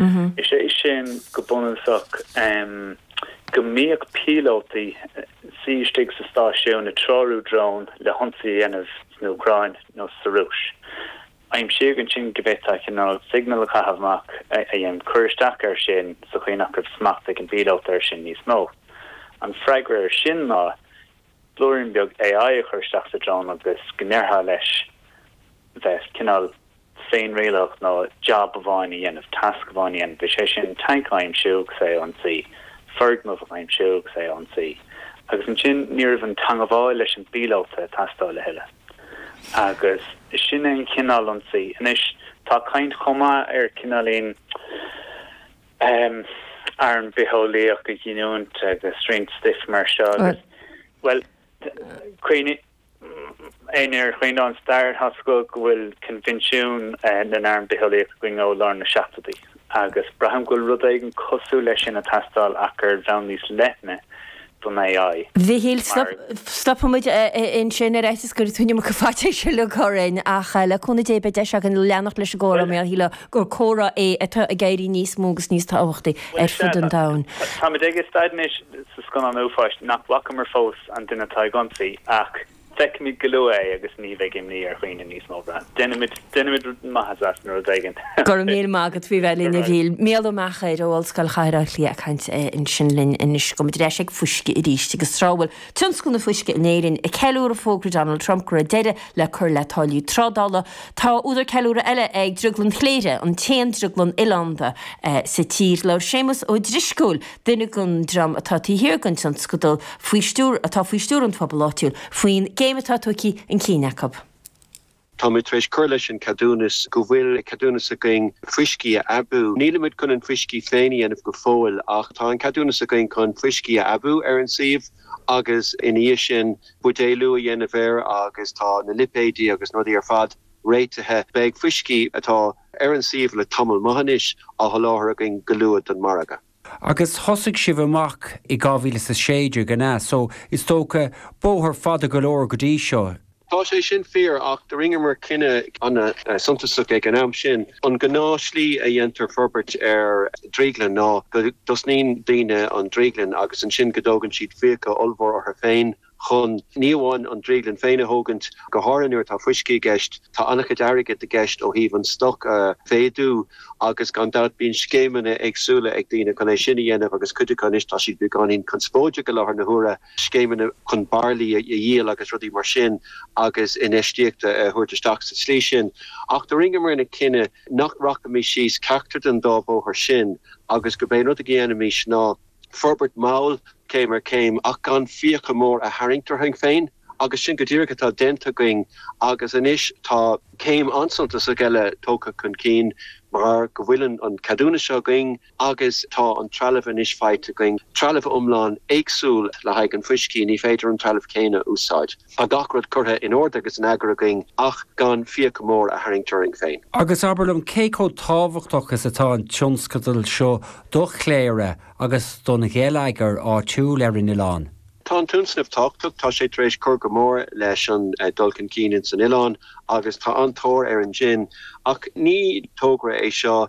is é sin go bunúsach go mbíodh píolótaí ina suí istigh sa stáisiún ag treorú dróin le hionsaí a dhéanamh san Úcráin nó sa Rúis. Aimsíodh ansin go bhféadfaí cineál signal a chaitheamh amach a dhéanfadh cur isteach air sin sa chaoi nach raibh smacht ag an bpíolóta air sin níos mó. An freagra air sin ná blúirín beag AI a chur isteach sa drón agus go ndéarfá leis bheith cineál féinrialaitheach nó jab amháin a dhéanamh, tasc amháin a dhéanamh, is é sin tanc a aimsiú agus é a ionsaí, foirgneamh a aimsiú agus é a ionsaí. Agus ansin ní raibh an teangmháil leis an bpíolóta ag teastáil a thuilleadh. Agus sin é an cineál ionsaí. Anois tá caint chomh maith ar cineáilín arm bitheolaíoch a ghiniúint agus roinnt stuif mar seo agus, bhuel, cuimhnigh, Éinne ar cuimhin leo an stair tá a fhios acu go bhfuil Coinbhinsiún na nArm Bitheolaíoch againn ó lár na seachtóidí agus braithim go bhfuil rud éigin cosúil leis sin ag teastáil ach ar bhonn níos leithne don AI. A Mhichíl, stopfaimid ansin ar fhaitíos go dtiocfaidh faitíos uilig orainn ach le cúnamh Dé beidh deis againn leanacht leis an gcomhrá mar sílim gur comhrá é atá ag éirí níos mó agus níos tábhachtaí ar fud an domhain. Táimid ag staid anois sa scannán uafáis nach bhfacamar fós. an duine atá ag ionsaí ach feicfimid go luath é agus ní bheidh imní ar dhaoine níos mó. Déanaimid déanaimid rud maith as as an rud éigin. Go raibh míle maith agat as a bheith linn, a Mhichíl. Micheál Ó Meachair ó Ollscoil Chathair Bhaile Átha Cliath ag caint ansin linn anois. Gabhfaimid ar ais ag fuisce arís agus tráth a bhfuil tionscal na fuisce in Éirinn ag ceiliúradh fógra Donald Trump go raibh deireadh le cur le táillí trádála, tá údar ceiliúradh eile ag Drioglann Chléire, an t-aon drioglann oileánda sa tír. Labhair Séamus Ó Drisceoil duine den dream atá taobh thiar den tionscadal faoi stiúir atá faoi stiúir an phobail áitiúil faoin gcéim atá tugtha chun cinn acu. Táimid tar éis cur leis an gceadúnas go bhfuil ceadúnas againn fuiscí a aibiú. Nílimid chun an fuiscí féin a dhéanamh go fóill ach tá an ceadúnas againn chun fuiscí a aibiú ar an suíomh agus ina dhiaidh sin buidéalú a dhéanamh air agus tá na lipéidí agus na rudaí ar fad réitithe. Beidh fuiscí atá. ar an suíomh le tamall maith anois, á sholáthar againn go luath don margadh. Agus thosaigh sibh amach i 2016, an ea? So, is dócha, bóthar fada go leor go dtí seo. Tá sé sin fíor, ach do rinneamar cinneadh an-suntasach ag an am sin, an gnáth slí a dhéantar forbairt ar dhrioglann ná go dtosnaíonn daoine an drioglann agus ansin go dtógann siad fiacha ollmhór orthu féin, chun ní amháin an drioglann féin a thógaint, go háirithe nuair atá fuiscí i gceist, tá an-chuid airgid i gceist ó thaobh an stoc a mhéadú agus gan dabht bíonn scéimeanna éagsúla ag daoine chun é sin a dhéanamh agus cuid acu anois tá siad beagáinín conspóideach i láthair na huaire, scéimeanna chun bairillí a dhíol agus rudaí mar sin agus infheistíocht a thabhairt isteach sa tslí sin. Ach do rinneamarna cinneadh nach rachaimis síos ceachtar den dá bhóthar sin agus gob é an rud a dhéanfaimis ná, forbairt mall, céim ar chéim, ach gan fiacha mór a tharraingt orainn féin agus sin go díreach atá déanta againn agus anois tá céim an-suntasach eile tógtha chun cinn mar go bhfuil an ceadúnas seo againn agus tá an trealamh anois faighte againn, trealamh iomlán éagsúil le haghaidh an fuiscí, ní féidir an trealamh céanna a úsáid. Tá gach rud curtha in ord agus in eagar againn ach gan fiacha mór a tharraingt orainn féin. Agus abair liom cé chomh tábhachtach is atá an tionscadal seo do Chléire agus don gheilleagar áitiúil ar an oileán? Tá an tionscnamh tábhachtach, tá sé tar éis cur go mór leis an dul chun cinn ins an oileán agus tá an-tóir ar an jin. Ach ní togra é seo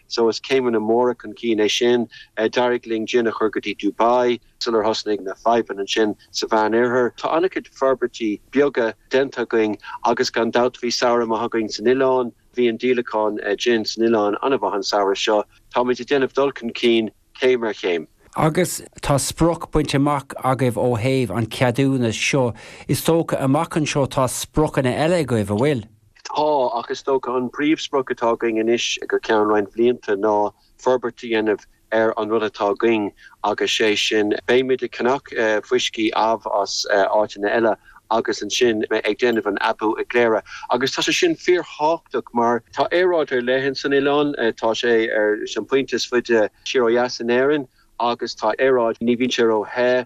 so is céimeanna móra chun cinn é sin. D'éirigh linn Jin a chur go dtí Dubai sular thosnaigh na fadhbanna ansin sa Mheánoirthear. Tá an-chuid forbairtí beaga déanta againn agus gan dabht bhí samhradh maith againn san oileán. Bhí an díolachán Jin san oileán an-mhaith an samhradh seo. Táimid ag déanamh dul chun cinn. céim ar chéim. Agus tá sprioc bainte amach agaibh ó thaobh an cheadúnas seo, is dócha amach anseo tá spriocanna eile agaibh, an bhfuil? Tá, ach is dócha an príomhsprioc atá againn anois go ceann roinnt bhlianta ná forbairt a dhéanamh ar an rud atá againn agus sé sin, beimid ag ceannach fuiscí amh as áiteanna eile. agus ansin ag déanamh an aibiú i gCléire. Agus tá sé sin fíorthábhachtach mar. Tá aeráid ar leith in san oileán, tá sé ar an pointe is faide siar ó dheas in Éirinn agus tá aeráid, ní bhíonn sé ró the,